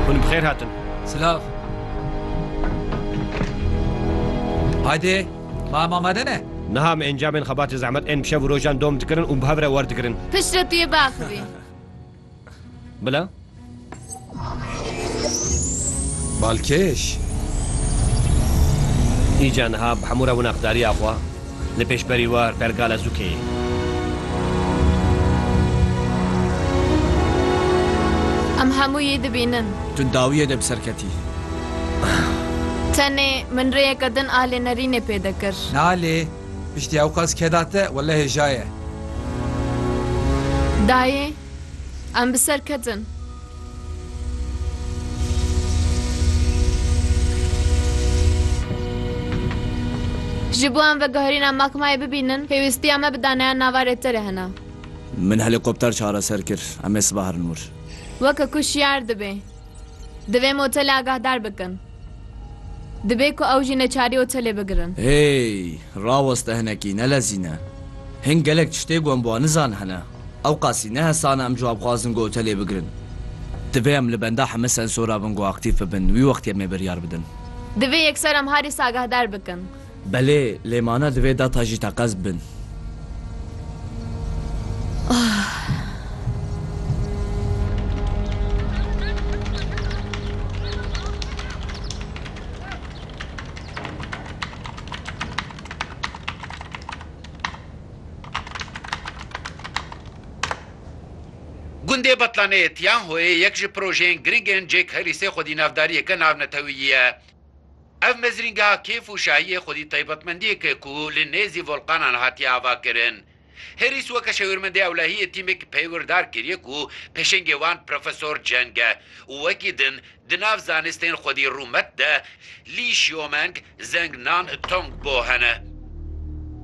Hûn bi xêr hatin. Silav. Haydê, ma em amade ne? Niha em encamên xebatê zehmet ên bi şev û rojan dom dikirin û bi hev re wer dikirin. Piştre tu yê biaxivî. Bila? Balkêş. Îca niha bi hemû re wina xdarîya xwe. Li pêş berî war pergala zûkê. Em hemû yî dibînin. Tu dawiyê de bi ser ketî. Tenê min rêyeke din a lê nerînê pê dikir. Na lê piştî ewqas keda te wele hêja ye. Dayê. Em bi ser ketin. Ji bo em veguherîna Makmayê bibînin, pêwîstiya me bi daneya nava rêterê hene. Min helîkopter çareser kir. Em ê sibahrin wir. Weke ku şiyar dibe. Divê em otelê agahdar bikin. Dibe ku ew jî neçarî otelê bigirin. Hey! Raweste hinekî, nelezîne. Hin gelek tiştê ku em bi wan nizan hene. Ewqasî ne hesane em ji wan bixwazin ku otelê bigirin. Divê em li benda heme sensora bin ku aktîf bibin, wî wextî em ê biryar bidin. Divê yekser em harî sagahdar bikin. Belê, lê mane divê data jî teqez bin. Gundê Batlaneyê Tianhoyê yek ji projeyên giring ên Jack Harrisê xwedî navdariyeke navnetewiyî ye. Ev mezrîngeha kêf û şahiyê xwedî taybetmendiyek e ku li nêzî volqanan hatiye avakirin. Herîs weke şewirmendê ewlehiyê tîmek peywirdar kiriye ku pêşengê wan Profesor Ceng e û wekî din di nav zanistên xwedî rûmet de Li Xiomeng, Zheng Nan, Tong Bo hene.